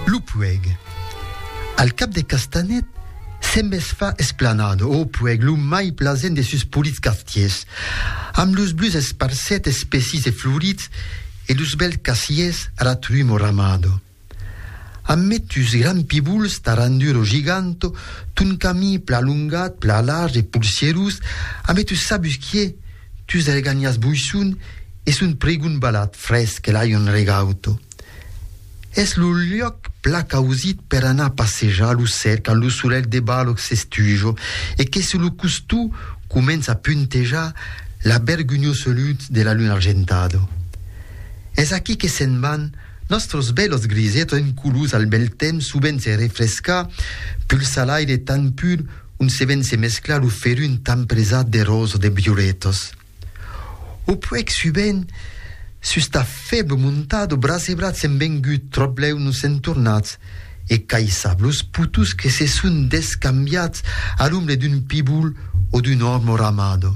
Lo puèg. Al cap de Castanet se mes fa esplanada au puèg lo mai plasent de sus polits quartiers, amb los bluts esparset espessis e florits e los bèls casiers a la trumor amada. Amb metus grands pibols taranduro giganto ton camí pla longat, pla large e polsierós, a metus sabusquiers, Tus algànias boisson e son pregon balat fresc e l'aion regauto. Es lo luòc pla causit per anar passejar lo sèr quand lo solelh de balòc s'estujo e que sus lo costó comença a puntejar la bergonhosa lutz de la luna argentado. Es aquí que se'n van nòstros bèlos grisetos en colors al bèl temps sovent se refrescar pulsa l'aire tan pur on se ven se mesclar lo ferun tan presat de rosa de briuretas. O puèi subent, sus ta fèble montado, brasebrat s'en vengut tròp lèu nos s'en tornats e caissab los putus que se son descambiats a l'ombre d'un pibul o d'un òrmo ramado.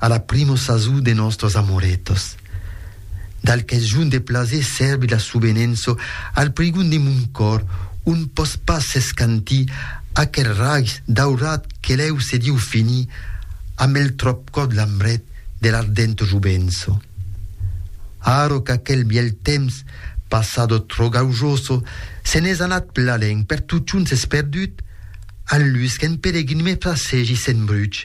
A la primo sasó de nòstros amoretos. Dal qu'es junt de plaser sèrbi la subenenço al prigon de mon còr on pòs pas s'escantir aquel raigs daurat que lèu se diu finir amb el tròpcòt lambret de l'ardento jovenço. Aro qu'aquel bièlh temps passado trò gaujoso se n'es anat plalèn per totjorn s'es perdut, al lus qu'en pelegrin me frasegi s'embruch,